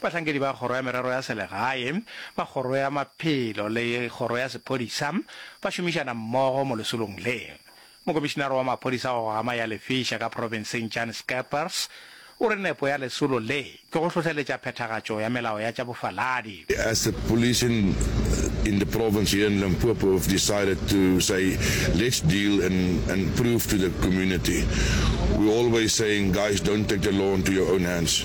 Bahlankedi ba Kgoro ya Merero ya Selegae, ba Kgoro ya Maphelo le Kgoro ya Sephodisa ba šomišana mmogo mo lesolong le. Mokomišinare wa Maphodisa wa go Gama ya Lefiša ka profenseng Jan Scheepers o re nepo ya lesolo le ke go hlohleletša phethagatšo ya melao ya tša bofaladi. As the police in in the province here in Limpopo have decided to say let's deal and and prove to the community, we always saying guys don't take the law into your own hands.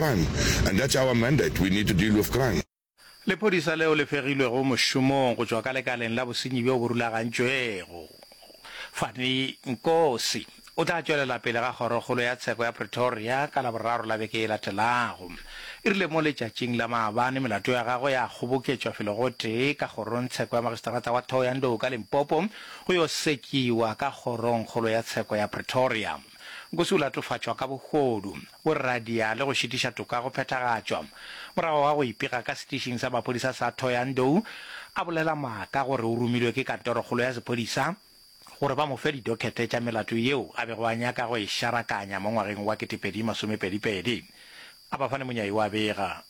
Bang, and that's our mandate, we need to deal with crime. Lephodisa leo le fegilwego mošomong go tšwa ka lekaleng la bosenyi bjo bo rulagantšwego. Fani Nkosi o tla tšwelela pele ga Kgorokgolo ya Tsheko ya Pretoria ka Laboraro la beke e latelago. E rile mo letšatšing la maabane melato ya gagwe ya kgoboketšwa felo gotee ka Kgorongtsheko ya Magisterata wa Thohoyandou ka Limpopo go yo sekiwa ka Kgorongkgolo ya Tsheko ya Pretoria. Nkosi o latofatšwa ka bogodu. go radia le go šitiša toka go phethagatšwa. Morago ga go ipega ka setišing sa maphodisa sa Thohoyandou, a bolela maaka gore o romilwe ke kantorokgolo ya sephodisa gore ba mo fe didokhete tša melato yeo a bego a nyaka go e šarakanya mo ngwageng wa 2022. A ba fane monyai wa bega.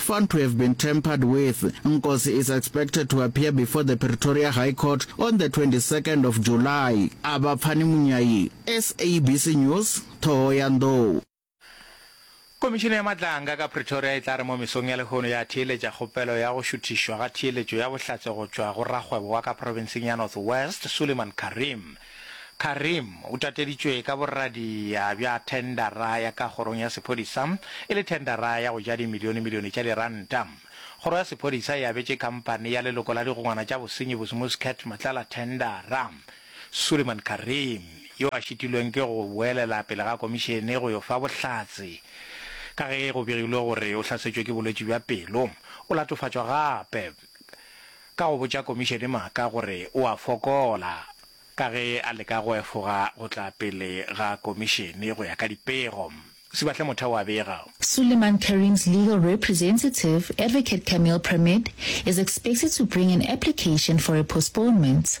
Found to have been tampered with, Nkosi is expected to appear before the Pretoria High Court on the 22nd of July. Abaphani Munyayi, SABC News, Thohoyandou. Komišene ya Matlanga ka Pretoria e tla re mo mesong ya lehono ya theeletša kgopelo ya go šuthišwa ga theeletšo ya bohlatse go tšwa go rakgwebo wa ka profenseng ya North West, Suleiman Karim. Karim o tateditšwe ka borradia bja thendara ya ka kgorong ya sephodisa e le thendara ya go ja dimilionemilione tša diranta. Kgoro ya sephodisa e abetše khampani ya leloko la digongwana tša bosenyi bo Smuscat Matlala thendara. Suleiman Karim, yo a šitilweng ke go boelela pele ga komišene go yo fa bohlatse ka ge go begilwe gore o hlasetšwe ke bolwetši bja pelo, o latofatšwa gape. ka go botša komišene maaka gore o a fokola ka ge a leka go efoga go tla pele ga komišene go ya ka dipego. Sibahle Motheo a bega. Suleiman Karim's legal representative, Advocate Camille Premid, is expected to bring an application for a postponement.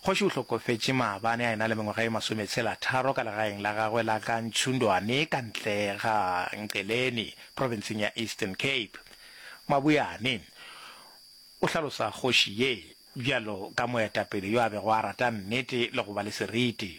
Kgoši o hlokofetše maabane a e na le mengwaga e masometshelatharo ka legaeng la gagwe la ka Ntshundwane ka ntle ga Nqeleni, profenseng ya Eastern Cape. Maboeane o hlalosa kgoši ye bjalo ka moetapele yo a bego a rata nnete le go ba le seriti.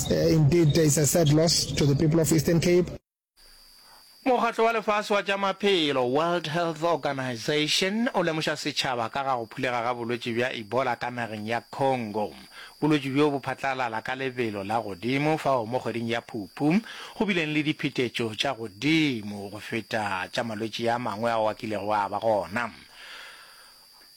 Indeed there is a sad loss to the people of Eastern Cape. Mokgatlo wa Lefase wa tša Maphelo, World Health Organization, o lemoša setšhaba ka ga go phulega ga bolwetši bja Ebola ka nageng ya Congo. Bolwetši bjo bo phatlalala ka lebelo la godimo fao mo kgweding ya Phuphu go bileng le diphetetšo tša godimo go feta tša malwetši a mangwe ao a kilego a ba gona.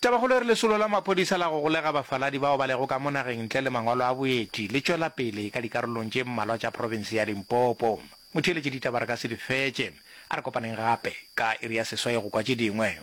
Tabakgolo e re lesolo la maphodisa la go golega bafaladi bao ba lego ka mo nageng ntle le mangwalo a boeti le tšwela pele ka dikarolong tše mmalwa tša profense ya Limpopo. Motheeletše ditaba re ka se di fetše. A re kopaneng gape ka iri ya seswai go kwa tše dingwe.